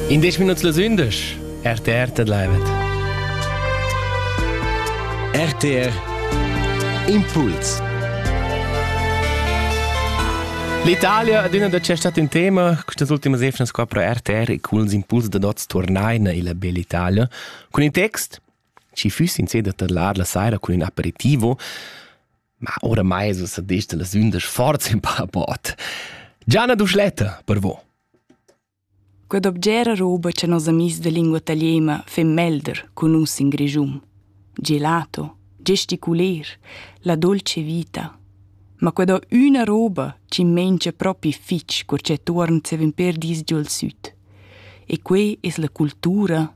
In disch minuts las undisch. RTR te leivet. RTR Impuls. L'Italia ad üna da cestat in tema, questas ultimas efnas qua pro RTR e cun els impuls da dots tornaina illa bella Italia, cun in text, ci füss in seda tadlar la saira cun un aperitivo, Ma oramai es ussa gist las ündesch forza in paraport. Gianna Duschletta, per vo. Quad obgera roba cha nos amis da lingua italiena fin melder cun nus in Grischun. Gelato, gesticuler, la dolce vita. Ma quad ho üna roba chi mengia propi fich cur cha tuorn zevin per dis giò'l süt. E que es la cultura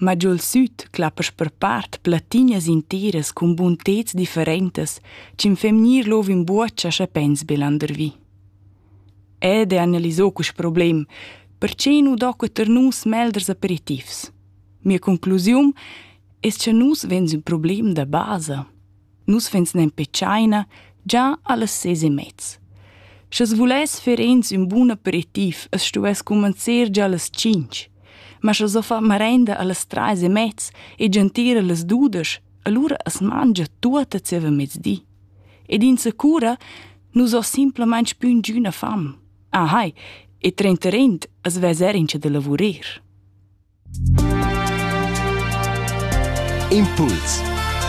Ma giul süt clappesch per part plattinas intiras cun bunteds differentas ch'ün femnir lov in buocha scha pens be landervi. Ed e analisò quist problem, perche nu do que tar nus melders aperitifs. Mia conclusiun es cha nus vegns ün problem da basa. Nus vegns nempe tschaina già allas ses e mez. Sch'es vuless fer ins ün bun aperitiv, es stuess cumanzer già allas tschinch. Ma sche so far marenda allas trais e mez e gentir allas dudesch, allura as mangia tuot a zieva mezdi. Ed insacura, nus ho simplamaing pün giüna fam. Ahai, e trenterint as vezer incha da lavurir. Impuls